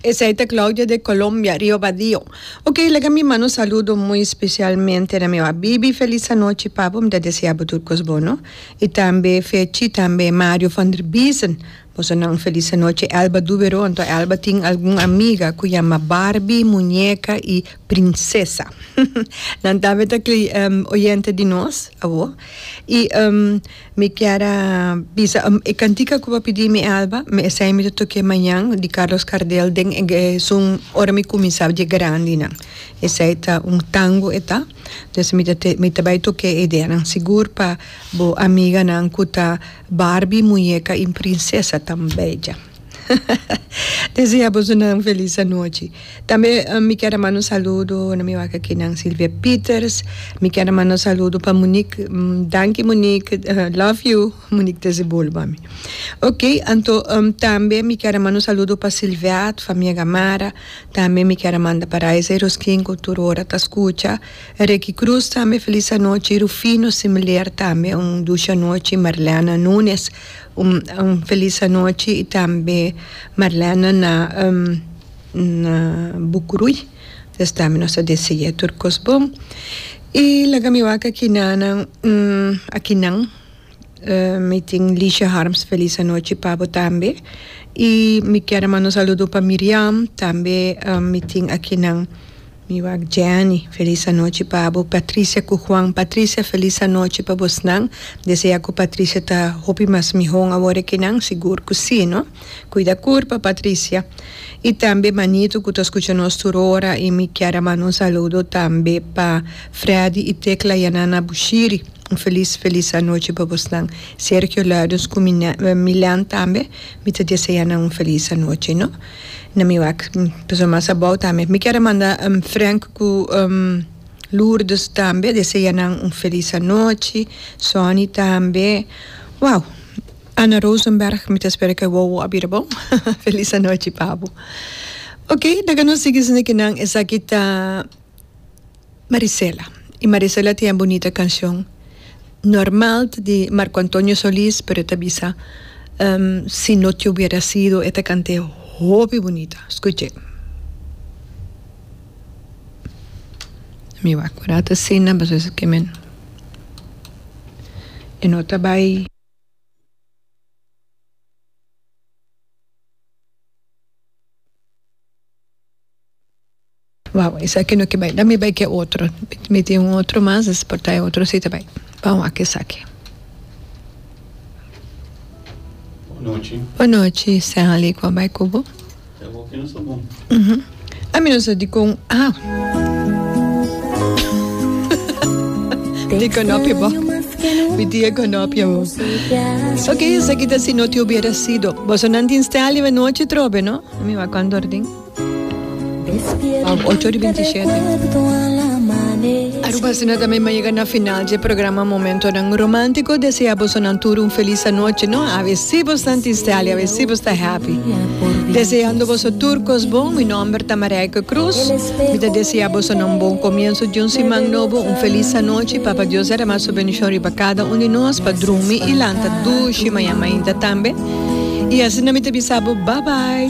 Esei ta Claudia de Colombia, Rio Badio. Ok, laga mi manda un saludo muy specialmente na mi Bibi, feliz anochi papu, mi ta desea bo tur cos bono, y tambe Fechi, tambe Mario van der Biesen, boso nan un feliz anochi, Elba Duberon, to Elba tin algun amiga cu yama Barbie, Muñeca y Princesa, nan tambe ta oyente di nos, awo, y. Mi kier a bisa e cantica cu bo pidi mi Alba, mi esey mi ta toke mañan di Carlos Gardel den e esun ora mi cuminsaba dje grandi nan. Esey ta un tango e ta, dus mi ta te mi ta bay toke e ideanan sigur pa bo amiganan cu ta Barbie muñeca y princesa tambey dje. Desea bosonan felis anochi. Tambe mi kier a manda un saludo na mi wak akinan Silvia Pieters. Mi kier a manda un saludo pa Monique. Danki Monique, love you Monique desde Bolbo ami. Ok anto tambe mi kier a manda un saludo pa Silveat, famia Gamarra. Tambe mi kier a manda pa Raisa y Roskin cu tur ora ta scucha. Ricky Cruz tambe felis anochi. Rufino Similear tambe un dushi anochi. Marlena Nunes. Un felis anochi y tambe Marlena na Bucuruy pues tambe nos ta deseae tur cos bon y laga mi wak aki nanan aki nan mi tin Lisha Harms felis anochi pa bo tambe y mi kier a manda un saludo pa Miriam tambe mi tin aki nan. Mi wak Jenny, felis anochi pa abo. Patricia cu Juan, Patricia felis anochi pa bosnan. Desea cu Patricia ta hopi mas mihon awor aki nan? Sigur cu si no. Cuida cur pa Patricia. Y tambe manito cu ta scucha nos tur ora y mi kier a manda un saludo tambe pa Freddy y Tecla Yanana Bushiri. Un felis felis anochi pa bosnan. Sergio Luiders cu Milan tambe mi ta desea nan un felis anochi no. Na mi wak persona mas abou tambe. Mi kier a manda Frank ku Lourdes tambe desea nan un felis anochi, Sonny tambe. Wow Anna Rosenberg mi ta spera ku e wowo a bira bon. Felis anochi pa bo. Ok ta ka nos sigui esaki ta. Marisela y Marisela tin e bunita cancion normal ta di Marco Antonio Solis pero e ta bisa si no te hubiera sido e ta cant'e hopi bunita scuch'e mi wak cu ora ta asina pasobra esaki mi e no ta bay. Wou, esaki no ke bai. Dami bai ke otro. Mi tin un otro mas, es por ta e otro si ta bai. Pan wak esaki. Bonochi. Bonochi, Stanley ku a bai ku bo. E bo ke no sa bon. Uhu. Ami no sa dikon a. Dikon no pi bo. Mi tin e konopia bo. Oke, esaki ta Si no te hubiera sido. Boso nan tin Stanley bonochi trobe, no? Mi wak kondor tin. Ap ocho di binti shete. Aruba asina ta mi mi a yega na final dje programa Momentonan Romantico. Desea boso nan tur un felis anochi no. A ve si bo stan tisteli, a ve si bo sta happy. Deseando boso tur cos bon. Mi nomber ta Marijke Cruz. Mi ta desea boso na un bon comienzo dje un siman nobo. Un felis anochi. Papa Dios derama su bendición riba cada un di nos pa drumi y lanta dushi mañan mainta tambe. Y asina mi ta bisa bo bye bye.